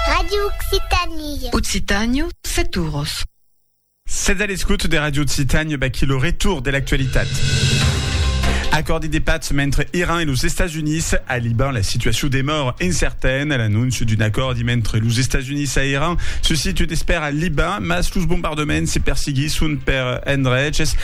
Radio Occitanie. Occitània, set oros. Sètz a l'escòt de Radio Occitània, baquí lo retour de l'actualitat. Acòrdi de patz mentre Iran e los Estats Units. A Liban, la situacion demòra incertaine. L'anónç d'un acòrdi mentre los Estats Units a Iran suscite d'espèra al Liban, mas los bombardements se persiguisson per endreches.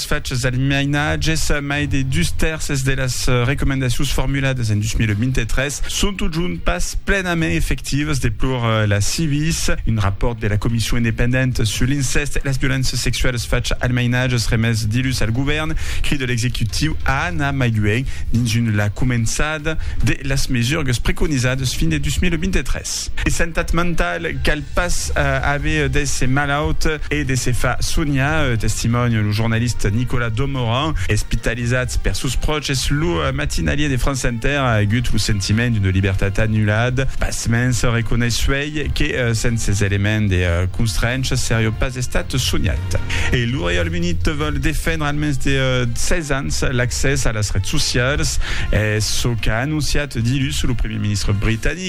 Es fachas del mainatge, mai de dus tèrces de las recomendacions formuladas en 2023, son totjorn pas plenament efectivas, deplor la Civis. Un rapòrt de la Comission independenta sus l'incèst e las violéncias sexualas fachas al mainatge remés dilhus al govèrn crida l'executiu a anar mai luènh dins la començada de las mesurgas preconizadas fin de 2023. De santat mentala, cal Pas aver d'èsser malaut e de se far soniar, testimòni lo jornalista Nicolas Domoran, espitalizat per sos pròches. Lo matinalier de France Inter a agut lo sentiment d'una libertat anulada. Pasmens, reconeis uèi que sens ses elements de constrencha seriá pas estat soniat. E lo Reialme-Unit vòl defendre al mens de 16 ans l'accès a las rets socialas. Es çò qu'a anonciat dilhus lo primièr ministre britanic.